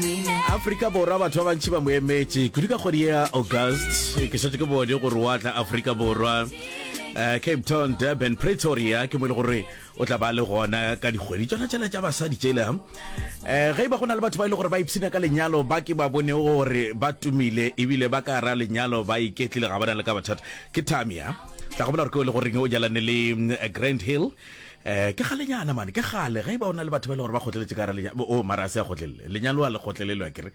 aforika borwa batho ba bantši ba mo emetše kudu ka kgwedi ya august ke šetse ke bone gore wa tla aforika borwa uh, cape town durban pretoria ke mo e le gore o tla ba le gona ka dikgwedi tsona tsela tša basadi tsela um eh, ge e ba go na le batho ba e le gore ba ipshina ka lenyalo ba ke ba bone gore ba tumile ebile ba ka ra lenyalo ba iketlile ga ba na le ka bathata ke tamia tla go bola gore ke o le goreng o jalane le mm, grand hill Eh, ke galenyana mane ke gale ge e ba o na le batho ba e le gore ba kgotleletše ka gara lenyalo o oh, mara a se a kgotlelele lenyalo a le kgotlelelwa kere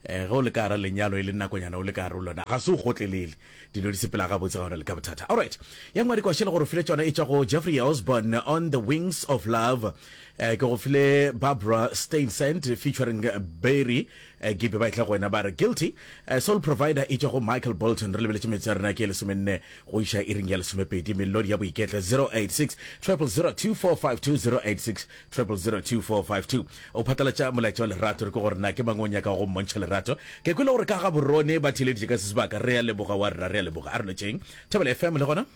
um ge o le ka gara lenyalo e le nakonyana o le ka gare lona ga se o kgotlelele dilo di sepela gabotse ga ona le ka bothata allright ya ngwadi kwa šele gore file tsona e tšwa go jeffrey osborn on the wings of love um ke go file barbara stainsent featuring berry Gibe ba etla go wena ba re, Guilty! Sole Provider e tšwa go Michael Bolton. Re lebeletše metsotso ya rena ke ye lesomenne go iša iring ya lesomepedi. Melodi ya Boiketlo, 086 000 2452, 086 000 2452. O phatlalatša molaetša wa lerato, re kwe gore na ke mang o nyakago go mmontšha lerato. Ke kwele gore ka Gaborone ba theeleditše ka se sebaka. Re a leboga wa rena, re a leboga. A re no tšeeng. Thobela FM le gona?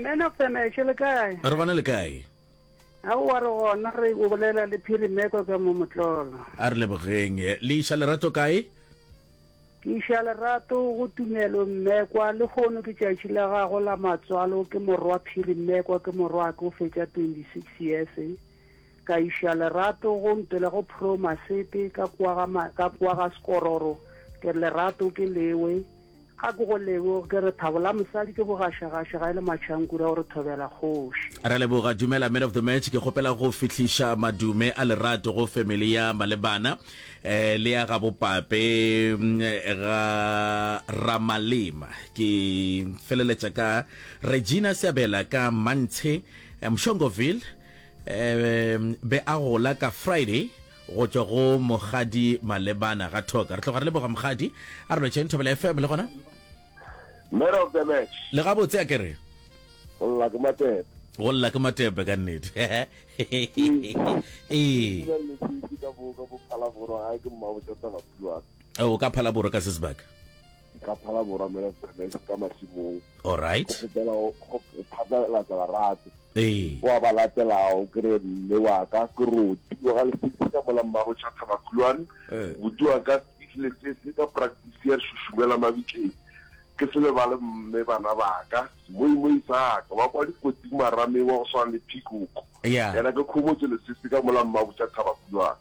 Man of the match, le kae? Re gona le kae? A o a re gona re o bolela le phirimeko ka mo motlolo. A re lebogeng. Le iša lerato kae? Ke iša lerato go Tumelo mmekwa, le hono ke tšatši la gago la matswalo, ke morwa phirimeko, ke morwake o fetša 26 years. Ka iša lerato go ntwela go Pro Masete ka kwa ga ma, ka kwa ga Skororo, ke re lerato ke lewe. Ga ke go lebo ke re thabola mosadi ke go gaša gaša ga e le matšhankura o re thobela kgoši. Ra leboga dumela man of the match ke kgopela go fihliša madume a lerato go family ya malebana eh, le ya gabo pape mm, ga ramalema ke feleletša ka regina seabela ka mantshe eh, mshongoville eh, be a gola ka friday go tšwa go mogadi malebana ga thoka re tloga re leboga mogadi a re lwetšeng thobela fm le gona man of the match le gabotse a kere go lla ke matepe go lla ke matepe ka nnete ee o ka phalaboro ka sesebaka Ke ka phala morwa mela tsena e ka masimong. All right. Go fetela go phatlalatsa barate. Ee. Wa ba latelago ke re mme wa ka ke roti wa ga lesese ka mola mmago cha thabakulwane. Buti wa ka speech lesese ka practice ya šušumela mabitleng. Ke se lebale mme bana ba ka. Semoimoi sa ka wa kwa dikotsing marameng wa go swana le peacock. Yena ke khomotso lesese ka mola mmago cha thabakulwane.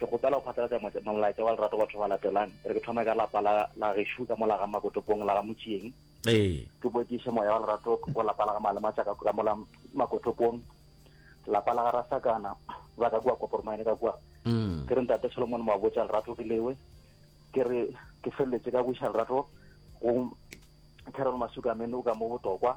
Ke kgopela go phatlalatša mo, molaetša wa lerato go batho ba latelang. E re ke thome ka lapa la, la gešo ka mo la ga Makotopong, la ga Motšieng. Ee. Ke bo ke iše moya wa lerato go lapa la ga Malematša ka, ka mo la Makotopong. Lapa la ga Rasakana ba ka kua Koporomine ka kua. Mm. Ke re Ntate Solomon Moabotša lerato ke lewe. Ke re ke feleletše ka go iša lerato go Carol Masuka Menu ka mo Botokwa.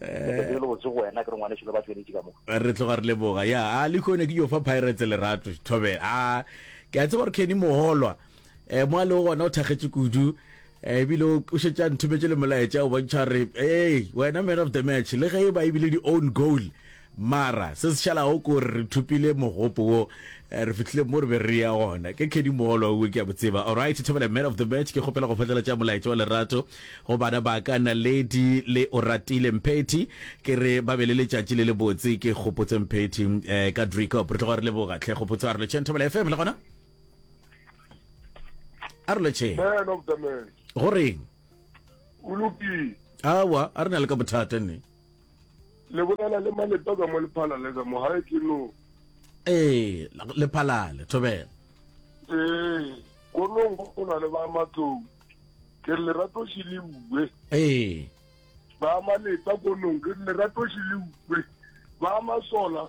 le botse go wena ke re ngwaneso le ba tšweletše ka mo re tloga re leboga ya a le kone ke yo fa pirates lerato thobela a ke a tseba gore keni mogolwa eh mo a le gona o thagetse kudu eh, ebile o šetše a nthometse le molaetša o bontšha re ee wena man of the match le ge e ba ebile di-own goal Mara se se šalago ke gore re thopile mogopo wo, re fihlile mo re be re ya gona. Ke Khedi Moolwa wo, ke a mo tseba. Alright, Thobela Man of the Match, ke kgopela go phatlalatša molaetša wa lerato go bana ba ka Naledi le Oratile Mphethi, ke re ba be le letšatši le lebotse. Ke Kgopotso Mphethi ka Driekop. Re tloga re leboga tlhe Kgopotso. A re lotšheng Thobela FM le gona. A re lotšheng. Man of the Match. Go reng? O lokile. Awa, a re na le ka bothata ne. le bolela le malepa ka mo lephalale ka mo gae ke no ee lephalale thobela ee konong go na le ba matlong ke re lerato se le uwe ee ba malepa konong ke re lerato se le uwe ba masola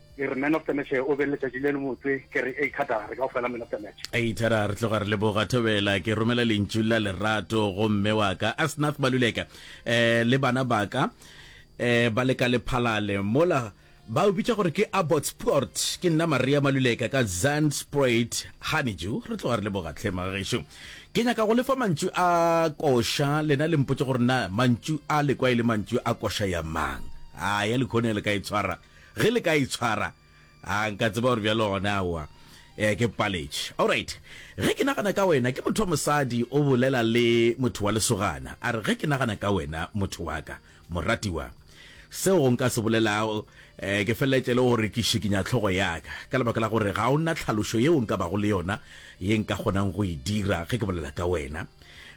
E re man of the match o be letšatši le lebotse, ke re ei Thada re ka go fela man of the match. Ei Thada re tloga re leboga, Thobela ke romela lentšu la lerato go mme wa ka Asnath Maluleka eh le bana ba ka eh ba le ka Lephalale mola ba o bitša gore ke Abbotspoort. Ke nna Maria Maluleka ka Zandspruit Honeydew. Re tloga re leboga tlhe mma gešo. Ke nyaka go lefa mantšu a koša lena le mpotše gore na mantšu a le kwa e le mantšu a koša ya mang. A ya lekhone le ka e tshwara. Ge le ka itshwara, a nka tseba gore bjalo gona aowa, ee, ke paletše. Alright. Ge ke nagana ka wena, ke motho wa mosadi o bolela le motho wa lesogana, a re, Ge ke nagana ka wena, motho wa ka, moratiwa, seo go nka se bolelago, ee, ke feleletše e le gore ke šikinya hlogo ya ka, ka lebaka la gore ga o na tlhalošo yeo nka bago le yona ye nka kgonang go e dira ge ke bolela ka wena.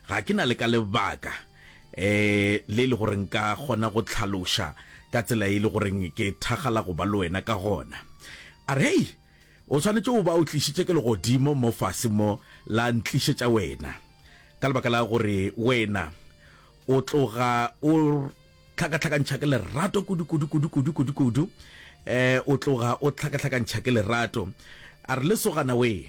Ga ke na le ka lebaka. um le e le gore nka kgona go tlhaloša ka tsela e le goreng ke thagala go ba le wena ka gona a re hei o tshwanetse o ba o tlišitše ke legodimo mo fase mo la ntlišetša wena ka lebaka la gore wena o tloga o tlhakatlhakantšha ke lerato kudu kudu kudu kudu kudu kudu um o tloga o tlhakatlhakantšha ke lerato a re lesogana wee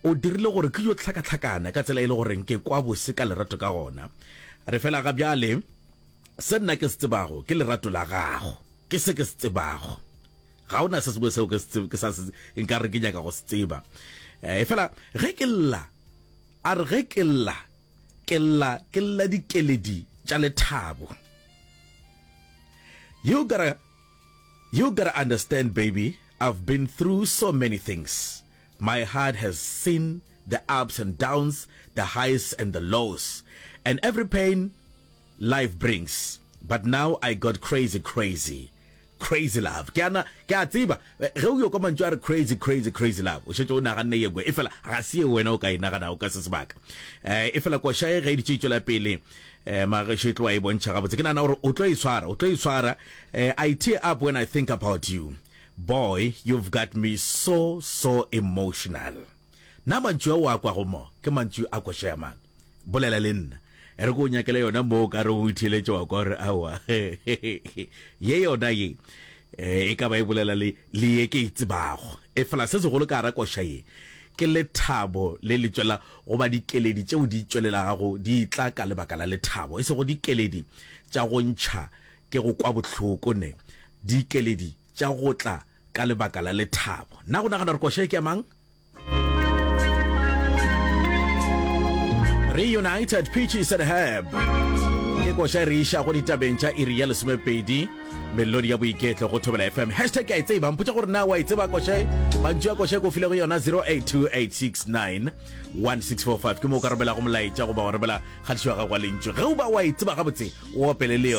O dirile gore ke yo hlakahlakana ka tsela e le gore nke kwa bose ka lerato ka gona. Re fela ga bjale, se nna ke se tsebago ke lerato la gago. Ke se ke se tsebago. Ga o na se sengwe seo ke se ke sa se nka re ke nyaka go se tseba. E fela ge ke lla, a re ge ke lla, ke lla ke lla dikeledi tša lethabo. You gotta, you gotta understand baby, I've been through so many things. My heart has seen the ups and downs, the highs and the lows, and every pain life brings, but now I got crazy crazy crazy love. Ke ana ke a tseba ge o yo kwa mantšu a re crazy crazy crazy love o šetše o naganne ye ngwe efela ga se ye wena o ka e naganago ka se sebaka um efela koša ye ge e ditše e tšwela pele um magešo e tloa e bontšha gabotse ke nagana gore o tlo e swara o tlo e swara um I tear up when I think about you Boy you've got me so so emotional Na mantšu ao a kwago mo ke mantšu a koša ya mang? Bolela le nna E re ke o nyakele yona mo o ka re o itheeletše wa kwa o re aowa Ye yona ye E ka ba e bolela le le ye ke e tsebago Efela se segolo ka gara koša ye ke lethabo le le tšwela goba dikeledi tšeo di tšwelelagago di tla ka lebaka la lethabo e sego dikeledi tša go ntšha Ke go kwa bohloko ne. Dikeledi tša go tla ka lebaka la lethabo. Na go nagana gore koša e ke ya mang? Reunited Peaches and Herb ke koša e re iša go ditabeng tša iri ya lesomepedi melodi ya boiketlo go thobela fm hashtag ke a e tseba mpotša gore na wa e tseba koša e mantšu ya koša e ko file go yona 0828691645 ke moo o ka romelago molaetša goba wa romela kgatišo ya gago wa lentšu ge o ba wa e tseba gabotse o opele leo